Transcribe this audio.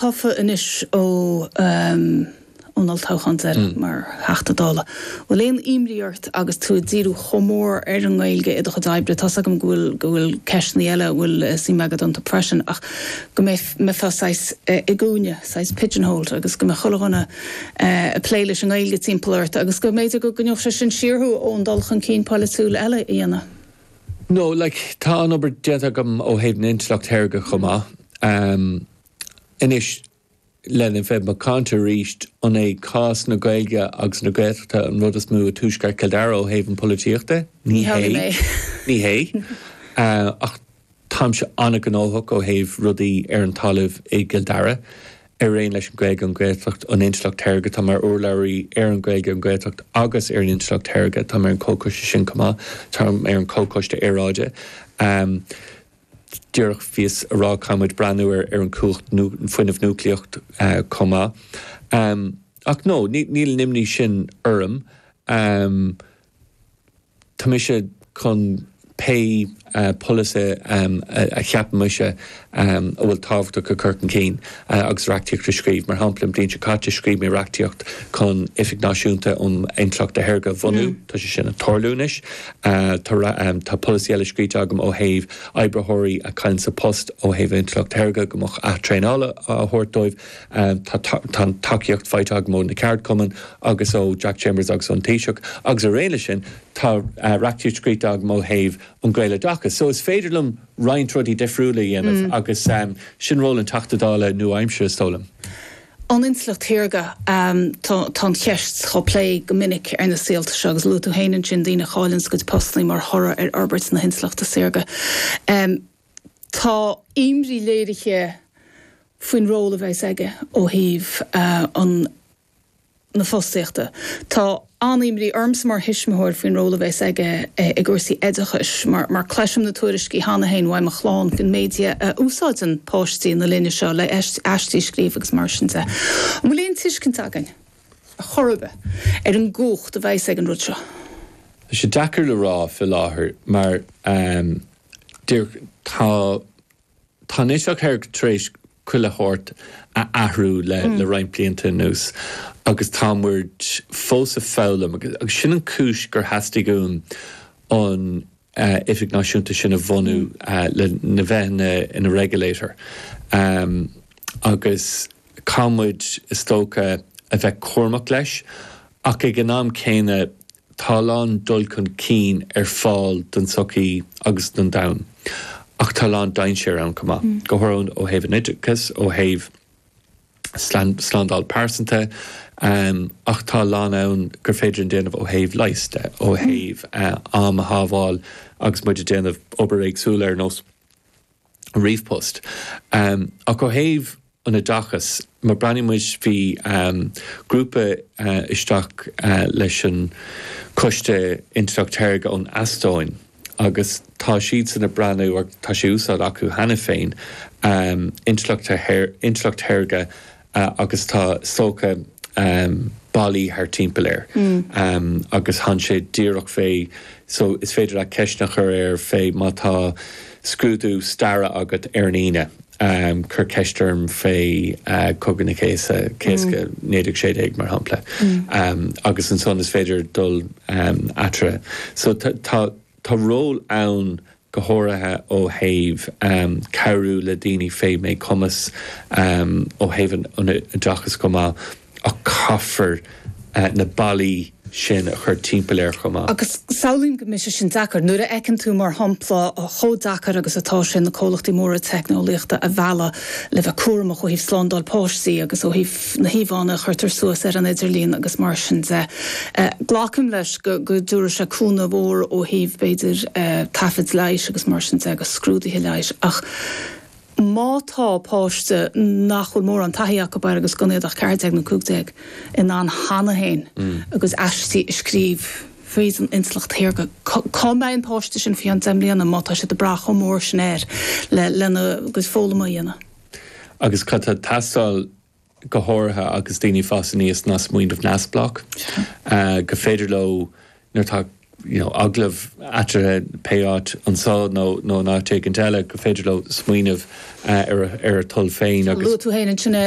tofa anois ó an olltoghchán deiridh mar Theachta Dála. Bhfuil aon imní ort agus tú ag díriú chomh mór ar an nGaeilge i do chuid oibre, tá's agam go bhfuil ceisteannaí eile a bhfuil suim agat iontu freisin, ach go mbeifeá saghas i gcúinne, saghas pigeonholed, agus go mbeadh chuile dhuine ag plé leis an nGaeilge timpeall ort agus go mb'fhéidir go gcoinneodh sé sin siar thú ón dul chun cinn poilitiúil eile a dhéanamh? No, like, tá an-obair déanta agam ó thaobh na intleacht shaorga chomh maith. Anois, lena bheith macánta arís, an é cás na Gaeilge agus na Gaeltachta an rud is mó i Tuaisceart Chill Dara ó thaobh an pholaitíocht de? Ní hé. Ní hé. Ach táimse an-ghnóthach ó thaobh rudaí ar an talamh i gCill Dara, araon leis an Gaeilge, an Gaeltacht, an intleacht shaorga. Tá mé mar urlabhraí ar an Gaeilge, an Gaeltacht agus ar an intleacht shaorga. Táim ar an chomhchoiste sin chomh maith. Táim ar an chomhchoiste aeráide. Díreach bhíos ag rá caithfimid breathnú ar an cumhacht fuinneamh núiclíocht chomh maith. Ach no, níl an imní sin orm. Tá mise chun pé polasaithe a cheapann mise a bhfuil tábhachtach a chur chun cinn agus reachtaíocht a scríobh. Mar shampla, an bhliain seo caite scríobh mé reachtaíocht chun Oifig Náisiúnta um Intleacht Shaorga a bhunú. Tá sé sin ag tarlú anois. Tá polasaí eile scríte agam ó thaobh oibritheoirí a chailleann a bpost ó thaobh intleacht shaorga go mbeadh athtraenáil á thabhairt dóibh. Tá an tacaíocht faighte agam ó na ceardchumainn agus ó Jack Chambers agus ón Taoiseach agus araon leis sin. Tá reachtaíocht scríte agam ó thaobh an Gaeloideachais. So is féidir liom roinnt rudaí difriúla a dhéanamh agus sin ról an Teachta Dála nua-aimseartha, is dóigh liom. an intleacht shaorga. Tá an cheist dhá plé go minic ar na saolta seo agus luaigh tú fhéin ansin daoine a chailleanns a gcuid postannaí mar thoradh ar fhorbairt na hintleachta saorga. Tá imní léirithe faoin ról a bheas aige ó thaobh an na fostaíochta. Tá an-imní ormsa mar thuismitheoir faoin ról a bheas aige i gcúrsaí oideachais mar cloisim na tuairiscí cheana féin ó mo chlann faoin méid a úsáideann páistí na linne seo le aistí a scríobh agus mar sin de. An bhfuil aon tuiscint againn ar chor ar bith ar an gcumhacht a bheas ag an rud seo? Tá sé deacair le rá fé láthair mar tá Tá an intleacht shaorga tar éis chuile shórt a athrú le roinnt blianta anuas agus tá muid fós ag foghlaim agus sin an chúis gur theastaigh uaim an Oifig Náisiúnta sin a bhunú lena bheith ina regulator agus caithfidh muid is dócha a bheith cúramach leis ach ag an am céanna Tá a lán dul chun cinn ar fáil don tsochaí agus don domhan ach tá a lán dainséar ann chomh maith, go háirithe ó thaobh an oideachais, ó thaobh slándáil pearsanta ach tá a lán ann gur féidir linn a dhéanamh ó thaobh leighis de, ó thaobh am a shábháil agus muid ag déanamh obair éagsúil ar nós. ríomhpost. Ach ó thaobh an oideachas, má bhreathnaíonn muid, bhí grúpa isteach leis an Coiste Intleacht Shaorga ón Eastóin agus tá siadsan ag breathnú, tá sé in úsáid acu cheana féin, Intleacht Shaorga agus tá saghas ballaí thart timpeall air agus téann sé díreach fé so is féidir leat ceisteanna a chur air fé má tá scrúdú staire agat ar an Aoine cuir ceist orm fé Cogadh na Cásca 1916 mar shampla agus ansan is féidir dul eatarthu so tá ról ann go háirithe ó thaobh cabhrú le daoine fé mhíchumas, ó thaobh an oideachais chomh maith, ach caithfear na ballaí sin a chur timpeall air chomh maith. Agus samhlaím go mbeidh sé sin deacair. Nuair a fheiceann tú, mar shampla, chomh deacair agus atá sé na comhlachtaí móra teicneolaíochta a mhealladh le bheith cúramach ó thaobh slándáil páistí agus ó thaobh, na híomhánna a chuirtear suas ar an idirlíon agus mar sin de. Glacaim leis go dtabharfaidh sé cúnamh mór ó thaobh, b'fhéidir, taifid leighis agus mar sin de agus scrúduithe leighis ach má tá páiste nach bhfuil mórán taithí acu air agus gan iad ach 14 nó 15 in ann cheana féin a gcuid aistí a scríobh fríd an intleacht shaorga, cá mbeidh an páiste sin faoi cheann deich mbliana má tá siad ag brath chomh mór sin air lena gcuid foghlama a dhéanamh? Agus cad tá ag teastáil go háirithe agus daoine ag fás aníos ná smaoineamh neamhspleách go féidir leo nuair tá you know agallamh eatarthu pé áit anso nó nó in áit éigint eile go féidir leo smaoineamh ar a ar a toil féin agus. Luaigh tú féin ansin é.